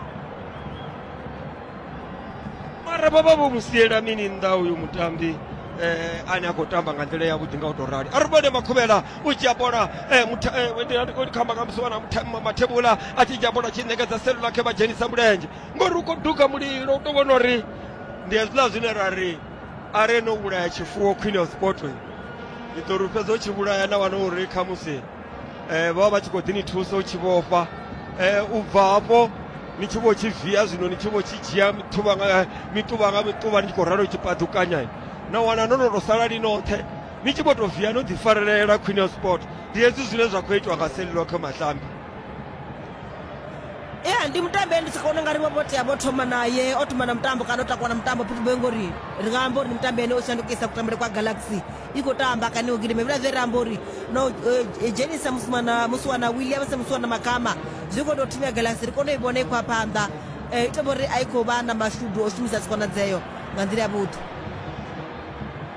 mara baba vho musiela mini nnḓa uyu mutambi eh, ane a khou tamba nga nḓila yavhuḓi nga u tou rali a ri vhone makhuvhela u dzhia bola eh, mutha- eh, ndi- ndi- ndi khamba nga musi wana mutha- ma- mathebula a tshi dzhia bola tshi ṋekedza selula khe vha dzhenisa mulenzhe ngori u khou duga mulilo u tou vhona uri ndi hezwiḽa zwine ra ri a re no vhulaya tshifuwo khwine ya sipoto ndi ḓo ri fhedza u tshi vhulaya na wana uri khamusi eh, vho vha vha tshi khou ḓi ni thusa u tshi vhofha eh, u bva hafho ni tshi vho tshi via zwino ni tshi vho tshi dzhia mithuvha nga eh, mituvha nga mituvha ni tshi khou ralo tshi paḓukanya eh. na wana no no to sala ni noṱhe ni tshi vho to via no ḓi farelela queen of sport ndi hezwi zwine zwa khou itiwa nga selilo kha mahlambi ya ndi mutambi ndi tshi kona nga ri vho vho tea vho thoma naye o thoma na mutambo kana o takuwa na mutambo pitubo ngori ri nga amba uri ndi mutambi ene o shandukisa kutambele kwa galaxy i khou tamba kana u gidima hevhila zwe ra amba uri no eh, dzhenisa musimana musiwana williams musiwana makama zwi khou tou thinya galasi ri kone u i vhona i khou a phanḓa um i tovha uri a i khou vha na mashudu o shumisa dzikonadzeo nga nḓila ya vhuḓi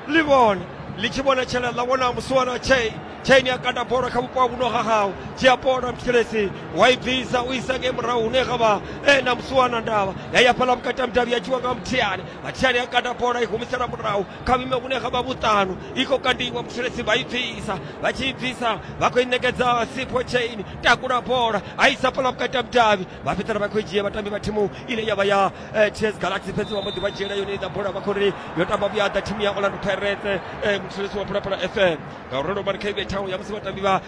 ḽi vhone ḽi tshi vhona tshela ḽa vhona musiwana chain chain ya kanda bola kha vhupo ha vhuno ha hau tshi ya bola mtshelesi wa i bvisa u isa ngei murahu hune ga vha e na musiwana ndavha ya ya fhaḽa vhukati ha mudavhi ya dzhiwa nga muthiani mathiani ya kanda bola i humisela murahu kha vhime vhune kha vha vhuṱanu i khou kandiwa mutsireledzi vha i bvisa vha tshi i bvisa vha khou i ṋekedza sipho chain takula bola a isa fhala vhukati ha mudavhi vha fhedzisela vha khou i dzhia vhatambi vha thimu ine ya vha ya eh, ts galaxy fhedzi vha mbo ḓi vha dzhiela yone iḽa bola vha khou ri yo tamba vhuyaḓa thimu ya orlando pirates eh, mutsireledzi wa phalaphala fm ngauralo mari kha ibe thaho ya musi vhatambi vha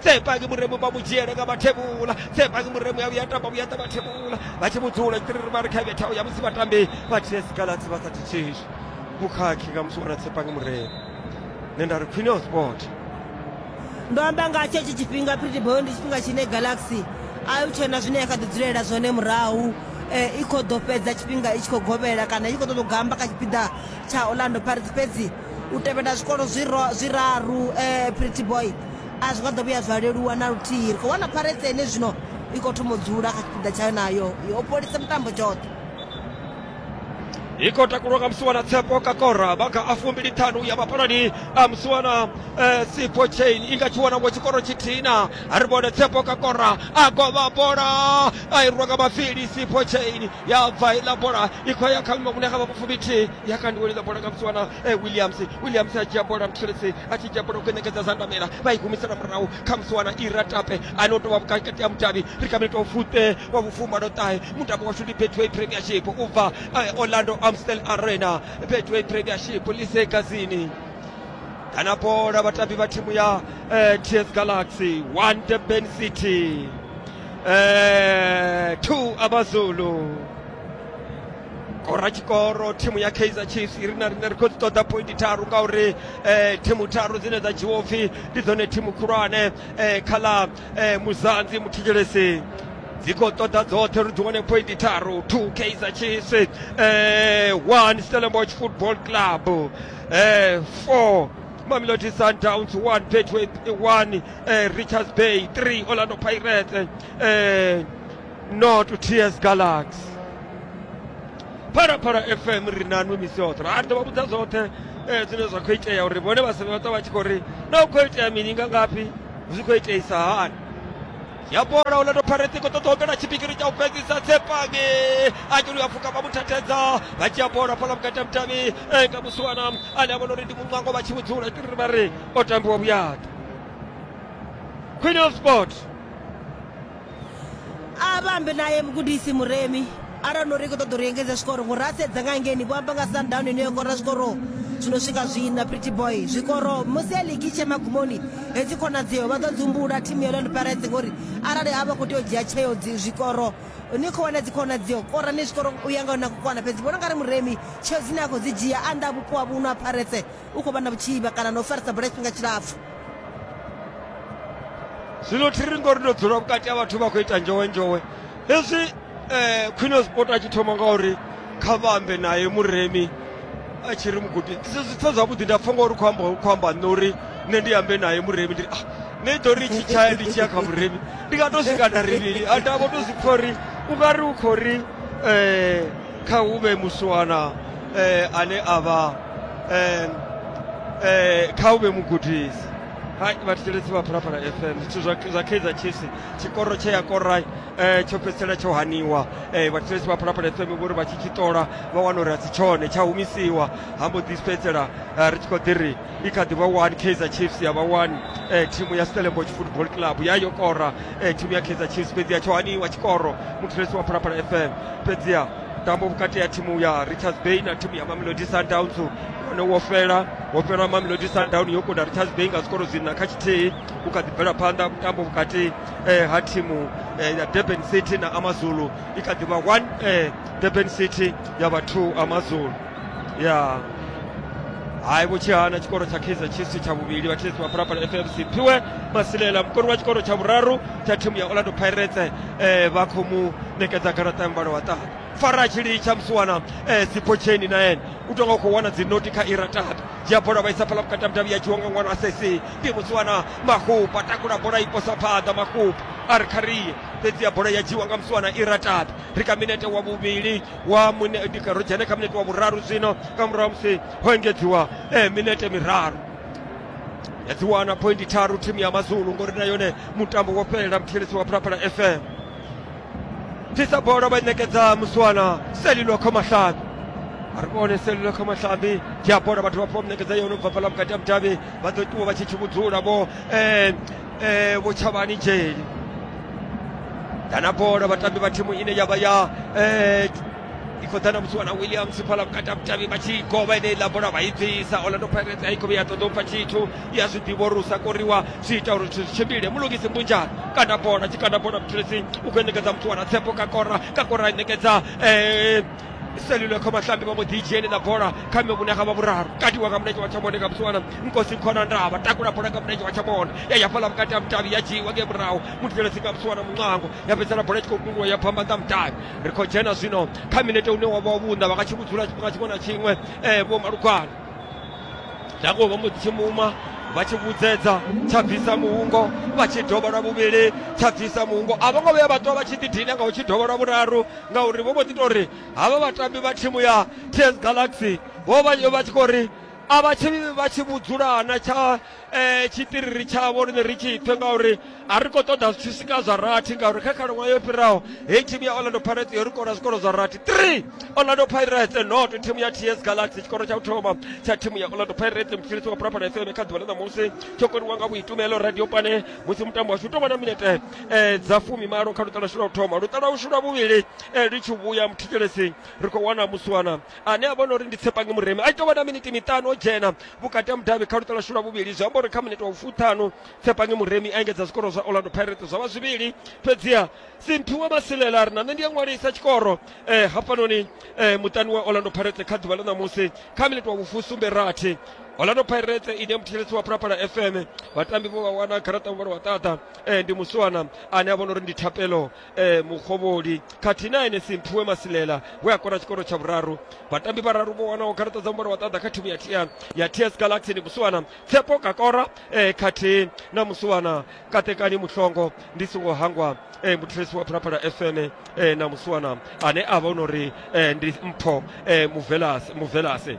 tsepaki muremu vha mu dzhiele nga vhathevhula tsepaki muremu ya vhuya tamba vhuya ḓa vhathevhula vha tshi mu dzula tshitiriri vha ri kha vhethaho ya musi vhatambi vha ts galatsi vha sa thithishi vhukhakhi nga musi wana tsepaki muremu nṋe nda ri khwine o sport ndo amba nga tsho tshi tshifhinga pretty boy ndi tshifhinga tshine galaxy a hu tshena zwine ya kha ḓi dzulela zwone murahu eh, i khou ḓo fhedza tshifhinga i tshi khou govhela kana i tshi khou ṱoḓa u gamba kha tshipiḓa tsha orlando pirates fhedzi u tevhela zwikolo zwiraru um pretty boy a zwi nga ḓo vhuya zwa leluwa na luthihi ri khou wana pharetse ene zwino i khou thoma u dzula kha tshipiḓa tshayo nayo yo polisa mutambo tshoṱhe i khou takulwa nga musiwana tshepo kakora vha kha a fumbili ṱhanu ya vhapalani a musiwana eh, sipo chain i nga tshi wana ngo tshikoro tshithina a ri vhone tshepo kakora a govha bola a i rwa nga mafili sipo chain ya bva iḽa bola i khou ya kha vhima vhune ha vha vhufumbithi ya kandiweliḽa bola nga musiwana eh, williams williams a dzhia bola mtshelesi a tshi dzhia bola u kwenyekedza zandamela vha i humisela murahu kha musi wana ira tape ane o tovha vhukati ha mudavhi ri kha minito fuṱe wa vhufumalo ṱahe mutambo washu ndi betway premiership u bva eh, orlando amstel arena betway premiership lise gazini kana bola vhatambi vha thimu ya eh, ts galaxy one durban city eh, two amazulu kora tshikoro thimu ya kaizer chiefs iri na rine ri khou dzi ṱoḓa pointi tharu ngauri um thimu tharu dzine dza dzhiwa upfhi ndi dzone thimu khulwane um kha ḽa um muzanzi muthetshelesi dzi khou ṱoḓa dzoṱhe ri dzi wane pointi tharu two kaizer chiefs um one stellenbosch football club um four mamelodi sundowns one betway one um richards bay three orlando pirates um no to ts galaxy pharafhara fm ri nanwi misi yoṱhe ra ri ḓo vha vhudza zwoṱhe eh, zwine zwa khou itea uri vhone vhasevhe vha ṱwa vha tshi khou ri na u khou itea mini nga ngafhi zwi khou iteisa hani ya bola o leto pharetse ko ṱoḓa opela tshipikiri tsha u fhedzisa tsepange a tshi luya pfuka vha mu thathedza vha dzhia bola fhala vhukati ha mutavhi eh, nga musiwana ane a vhona uri ndi muṅwango vha tshi vhudzula tiri ri vha ri o tambiwa vhuyaḓa queen of sport a vha ambe naye mugudisi muremi arali no ri khou ṱoḓa uri engedze zwikoro ngori a sedza nga ngeni vho amba nga sundown ine yo kora zwikoro zwi no swika zwina pretty boy zwikoro musi ya ligi tshe magumoni hedzi khonadzeo vha ḓo dzumbula thimu ya orlando pirates ngori arali a vha khou tea u dzhia tsheo zwikoro ni khou wana dzikhonadzeo kora ni zwikoro u ya nga na kukwana fhedzi vhona nga ri muremi tsheo dzine a khou dzi dzhia a nnḓa vhupo ha vhuno ha pirates u khou vha na vhutshivha kana na u farisa bola tshifhinga tshilapfu zwino thi ri ngori ndo dzula vhukati ha vhathu vha khou ita njowe njowe hezwi um khwine sport a tshi thoma ngauri kha vhambe naye muremi a tshi ri mugudi zwi pfa zwavhuḓi nda pfa ngauri khou amba khou amba nṋe uri nṋe ndi ambe naye muremi ndi ah nṋe i ḓo ri tshi tshaya ndi tshi ya kha muremi ndi nga to swika nda rivhili a ndavho to zwi pfa uri u nga ri u khou ri um Kha hu vhe musiwana e, ane a vha e, e, kha hu vhe mugudisi hai vhathetshelesi vha phalaphala fm zwithu zwa zwa kaizer chiefs tshikoro tshe ya kora eh, tsho fhedzisela tsho haniwa eh, vhathetshelesi vha phalaphala fm vho ri vha tshi tshi ṱola vha wana uri a si tshone tsha humisiwa ha mbo ḓi fhedzisela eh, ri tshi khou ḓi ri i kha ḓivha one kaizer chiefs ya vha one eh, thimu ya stellenbosch football club ya yo kora eh, thimu ya kaizer chiefs fhedziha tsho haniwa tshikoro muthulesi wa phalaphala fm fhedziha mutambo vhukati ha thimu ya richards bay na thimu ya mamelodi sundowns wone wo fhela wo fhela mamelodi sundown yo kunda richards bay nga zwikoro zwina kha tshithihi u kha ḓi bvela phanḓa mutambo vhukati eh, ha thimu eh, ya durban city na amazulu i kha ḓi vha one eh, durban city ya vha two amazulu ya hayi vhutshiha na tshikolo tsha kaizer chiefs tsha vhuvhili vhatshisi vha phalaphala fmc phiwe masilela mukoni wa tshikolo tsha vhuraru tsha thimu ya orlando pirates eh, vha khou mu ṋekedza garaṱa ya muvhala wa ṱaha fara tshili tsha musiwana eh, sipotsheni na ene u tonga u khou wana dzinoti kha ira tata dzhia bola vha isa phala vhukati ha mudavhi ya dzhiwa nga ṅwana wa sesi ndi musiwana mahupa takula bola i posa phanḓa mahupa a ri kharie fhedzi ya bola ya dzhiwa nga musiwana ira tata ri kha minete wa vhuvhili wa mune, ndi ka- ro dzhena kha minete wa vhuraru zwino nga murahu ha musi ho engedziwa eh, minete miraru ya dzi wana pointi tharu thimu ya mazulu ngori na yone mutambo wo fhelela muthieledzi wa phalaphala fm tisa bola vha i ṋekedza muswana selilo khomahlabi ari vhone selilo khomahlabi dzhia bola vhathu vha pfa vha mu ṋekedza yone u bva fhala vhukati ha mudavhi vha ḓo ṱuwa vha tshi tshi vhudzula vho eh, eh, vhutshavhani dzheni dana bola vhatambi vha thimu ine ya vha ya eh, i khou ḓa na musi wana williams fhala vhukati ha vhutavhi vha tshi govha ine iḽa bola vha i bvisa orlando pirates a i khou vhe ya ṱoḓa u pfa tshithu i a zwi ḓivha uri u sa koriwa zwi ita uri zwithu zwi tshimbile mulungisi mbunjana kana bola tshikana bola muthelesi u khou i ṋekedza muthu wana tshepo ka kora ka kora i ṋekedza eh, selule kho vhatambi vha mbo ḓi dzheni na bola kha mme vhune ga vha vhuraru katiwa nga mulenzhe wa tshamone nga musiwana nkosi khona ndavha takula bola nga mulenzhe wa tshamone ya ya fhala vhukati ha mutavhi ya dzhiiwa nge murahu muthelesi nga musiwana muṅwango ya fhedzisela bola i tshi khou kunguwa ya phamba nga mutavhi ri khou dzhena zwino kha minete une wa vha wa vhunda vha nga tshi vhudzula tshifhinga tshiṅwe na tshiṅwe um vho malugwana dango vha mbo ḓi tshimuma vha tshi vhudzedza tsha bvisa muhungo vha tshi dovha lwa vhuvhili tsha bvisa muhungo a vho ngo vhuya vha ṱwa vha tshi ḓidina nga u tshi dovha lwa vhuraru ngauri vho mbo ḓi tori havha vhatambi vha thimu ya TS Galaxy vho vha vha tshi khou ri a vha tshi vha tshi vhudzulana tsha eh, tshitiriri tshavho riṋe ri tshi pfe ngauri a ri khou ṱoḓa zwithu swika zwa rathi ngauri kha khalaṅwaha yo fhiraho heyi thimu ya orlando pirates yo ri kora zwikoro zwa rathi three orlando pirates not thimu ya ts galaxy tshikoro tsha u thoma tsha thimu ya orlando pirates mutshilisi wa purapara fm kha ḓuvha ḽa ṋamusi tsho koniwa nga vhuitumelo radio pane musi mutambo washu u tou vha na minete eh, dza fumimalo kha luṱa lwashu lwa u thoma luṱa lwashu lwa vhuvhili eh, ri tshi vhuya muthetshelesi ri khou wana muswana ane a vhona uri ndi tshepange muremi a ita vhona miniti miṱanu o dzhena vhukati ha mudavhi kha luṱa lwashu lwa vhuvhili zwi amba uri kha miniti wa ufuṱhanu tshepange muremi a engedza zwikoro zwa orlando pirates zwa vha zwivhili fhedziha simphiwe masilela ri na nṋe ndi a ṅwalisa tshikoro eh, hafhanoni eh, muṱani wa orlando pirates kha ḓuvha ḽa ṋamusi kha miniti wa vhufusumbe rathi orlando pirates ine muthetshelesi wa phalaphala fm vhatambi vho vha wana garaṱa vhuvhalo wa ṱaṱa e, ndi muswana ane a vhona uri ndi thapelo e, mukhovholi khathihi na ene simphiwe masilela we a kora tshikoro tsha vhuraru vhatambi vhararu vho wanaho garaṱa dza muvhala wa ṱaḓa kha thimu ya tia ya ts galaxy ndi muswana tsepo kakora e, khathihi na muswana katekani muhlongo ndi songo hangwa e, muthulesi wa phalaphala fm e, na muswana ane a vhona uri e, ndi mpho e, muvelase muvelase